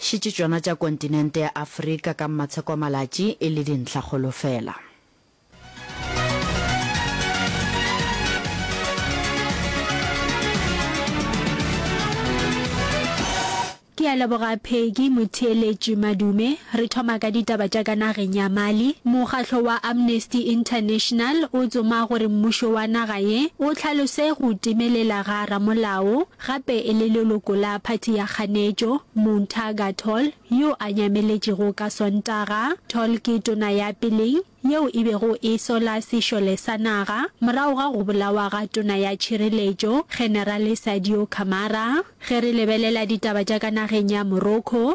Šetše tšona tša kontinente ya Afrika ka mmatshekomalatši e le dintlhakgolo fela. Ke a leboga Peggy Motheeletši Madume. Re thoma ka ditaba tša ka nageng ya Mali. Mokgatlo wa Amnesty International o tsoma gore mmušo wa naga ye o hlalose go timelela ga ramolao, gape e le leloko la phathi ya kganetšo, Mountaga Tall, yo a nyameletšego ka Sontaga. Tall ke tona ya peleng yeo e bego e sola sešole sa naga morago ga go bolawa ga tona ya tšhireletšo, Generale Sadio Camara. Ge re lebelela ditaba tša ka nageng ya Morocco,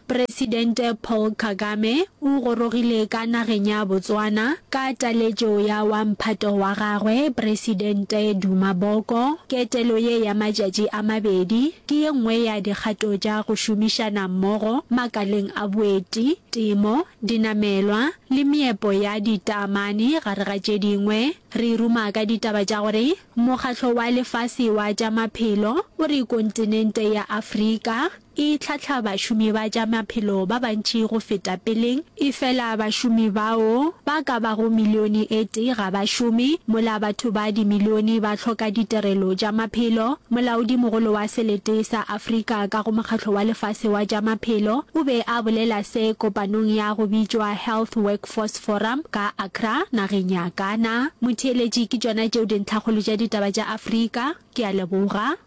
Presidente Paul Kagame o gorogile ka nageng ya Botswana ka taletšo ya wa mphato wa gagwe Presidente Duma Boko. Ketelo ye ya matšatši a mabedi ke ye nngwe ya dikgato tša go šomišana mmogo makaleng a boeti, temo, dinamelwa le meepo ya ditaamane gare ga tše dingwe. Re ruma ka ditaba tša gore Mokgatlo wa Lefase wa tša Maphelo o re kontinente ya Afrika E hlahla bašomi ba tša maphelo ba bantši go feta peleng. Efela bašomi bao ba ka bago milione e tee ga ba šome, mola batho ba dimilione ba hloka ditirelo tša maphelo. Molaodimogolo wa Selete sa Afrika ka go Mokgatlo wa Lefase wa tša Maphelo o be a bolela se kopanong ya go bitšwa Health Workforce Forum ka Accra, nageng ya Ghana. Motheeletši, ke tšona tšeo dintlhakgolo tša ditaba tša Afrika. Ke a leboga.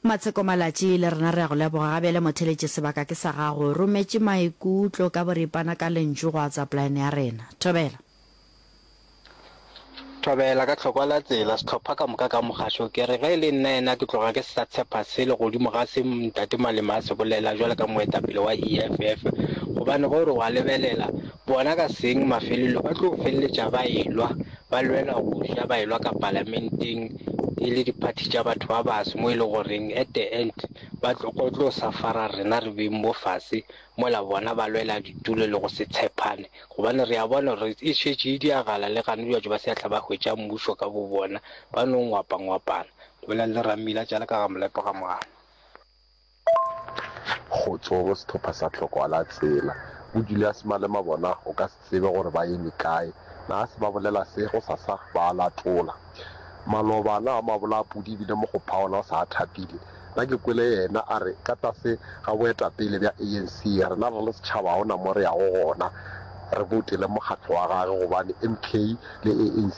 Matsheko Malatši le rena re a go leboga gabjale motheletše sebaka ke sa gago rometše maikutlo ka boripana ka lentšu go WhatsApp line ya rena. Thobela. Thobela ka tlhokwa la tsela, sehlopha ka moka ka mogašo. Ke re ge e le nna yena ke tloga ke se sa tshepa selo godimo ga se Ntate Malema a se bolela bjalo ka moetapele wa EFF. Gobane ge o re o a lebelela, bona ka seng mafelelo ba tlo feleletša ba elwa, ba lwela go ja, ba elwa ka palamenteng e le diphathi tša batho ba baso mo e le goreng at the end ba tlo tlo sa fara rena re beng bo fase mola bona ba lwela ditulo le go se tshepane, gobane re a bona gore e šetše e diagala le gane batho ba seatla ba hwetša mmušo ka bobona, ba no ngwapangwapana. Go bolela le Rammila tša le ka ga molepo ga moana. Kgotso go sehlopha sa Tlhokoalatsela. Bo Julias Malema bona o ka. tsebe gore ba eme kae. Na se ba bolela se go sa sa ba a latola. Maloba na a mabola a pudi ebile mokgopha ona o sa a thapile. Na ke kwele yena a re ka tlase ga boetapele bja ANC rena re le setšhaba ga ona mo re yago gona re boutele mokgatlo wa gage gobane MK le ANC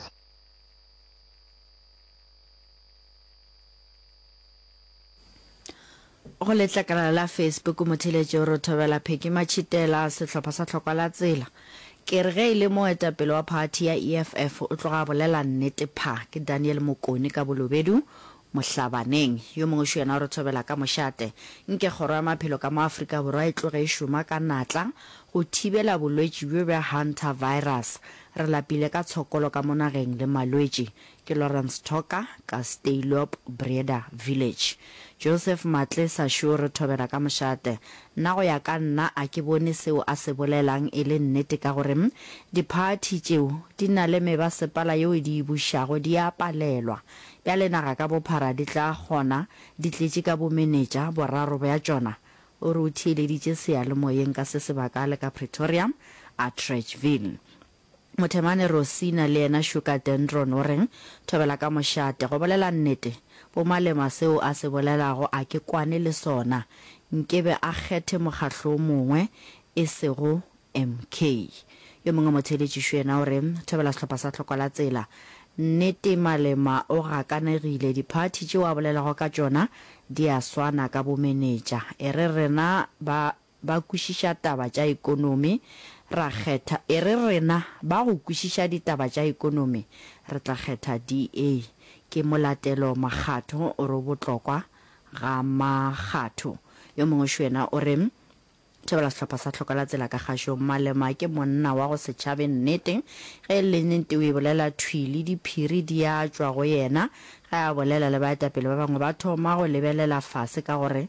Go letlakala la Facebook motheletši o re thobela Pheki Matšhitela, sehlopha sa Tlhokwa la Tsela. Ke re ge e le moetapele wa phathi ya EFF o tloga a bolela nnete pha. Ke Daniel Mokone ka Bolobedu, Mohlabaneng. Yo mongwešu yena o re thobela ka mošate. Nke Kgoro ya Maphelo ka mo Afrika Borwa e tloge e šoma ka natla go thibela bolwetši bjo bja Hantavirus. Re lapile ka tshokolo ka mo nageng le malwetši. Ke Lawrence Thoka ka Steylop Breda Village. Joseph Matle sa šo re thobela ka mošate. Nna go ya ka nna a ke bone seo a se bolelang e le nnete ka gore di party tšeo di na le mebasepala yeo e di bušago di a palelwa. Bjale naga ka bophara di tla kgona di tletše ka bomenetša boraro bja tšona? O re o theeleditše seyalemoyeng ka se sebaka le ka Pretoria, Atteridgeville. Mothemane Rosina le yena Sugar Dendron o reng, Thobela ka mošate. Go bolela nnete, bo Malema seo a se bolelago a ke kwane le sona. Nkebe a kgethe mokgahlo o mongwe e sego MK. Yo mongwe motheeletšišu yena o re, Thobela sehlopha sa Tlhoko la Tsela. Nnete Malema o gakanegile, diphathi tšeo a bolelago ka tšona di a swana ka bomenetša. E re rena ba ba kwešiša taba tša ekonomi, ra kgetha, e re rena ba go kwešiša ditaba tša ekonomi, re tla kgetha DA. Ke molatelo makgatho o re o botlokwa ga makgatho. Yo mongwe šwena o re, Thobela sehlopha sa Tlhoka la tsela ka kgašong. Malema ke monna wa go setšhabeng nnete. Ge e le nnete o e bolela thwi le diphiri di a tšwa go yena. Ge a bolela le baetapele ba bangwe ba thoma go lebelela fase ka gore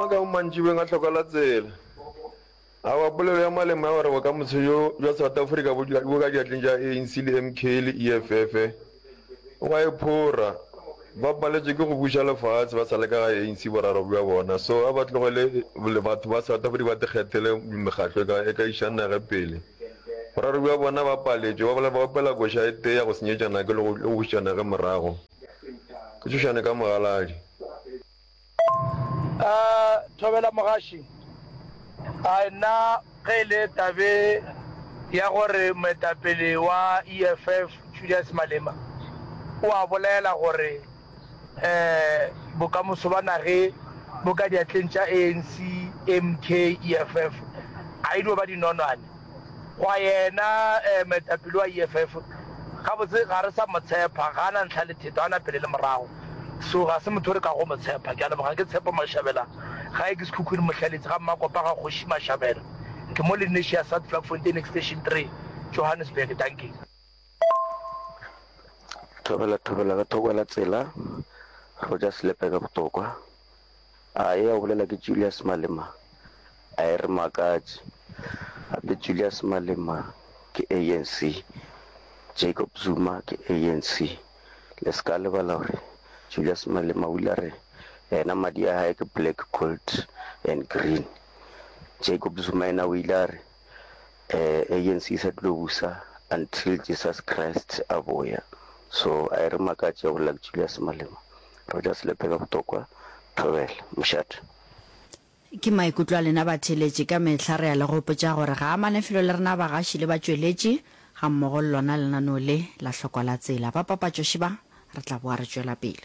Maka mo mantšibeng a hloka la tsela. Awa polelo ya Malema ya gore bokamoso bjo bja South Africa bo bo ka diatleng tša ANC le MK le EFF o a e phora. Ba paletšwe ke go buša lefaatshe ba sa le ka ga ANC boraro bja bona so a ba tlogele le batho ba South Africa ba ikgethele mekgatlo e ka e ka iša nage pele. Boraro bja bona ba paletšwe ba ba opela koša e tee ya go senyetša nage le go le go bušetša nage morago. Ke tšhošane ka mogaladi. A Thobela Mogaši, a nna ge e le tabe ya gore moetapele wa EFF Julius Malema o a bolela gore bokamoso ba nage bo ka diatleng tša ANC, MK, EFF a e dio ba dinonwane. Gwa yena, eh, moetapele wa EFF, gabotse ga re sa mo tshepa. Ga a na ntlha le theto, a na pele le morago. So, ga se motho o re kago mo tshepa. Ke a leboga. Ke Tshepo Mashabela. Gae ke Sekhukhune Mohlaleetsi ga Mmakopa ga Kgoši Mashabela. Ke mo Lenasia South Vlakfontein Extension three, Johannesburg. Dankie. Thobela thobela ka thoko la tsela, Rogers Lepe ka botokwa. A eya o bolela ke Julius Malema? A e re makatše. Gape Julius Malema ke ANC, Jacob Zuma ke ANC. Le se ka lebala gore Julius Malema o ile a re yena madi a hae ke black, gold and green. Jacob Zuma yena o ile a re um agency e sa tlo busa until Jesus Christ a boya, so a e re makatše go Luck Julius Malema, re tla se lepele botokwa thobela mošate. Ke maikutlo a lena batheeletši, ka mehla re a le gopotša gore ga a mane felo le rena bagaši le batšweletši gammogo le lona lenaneo le la Hlokwa la Tsela. Ba papatšoši ba, re tla boa re tšwela pele.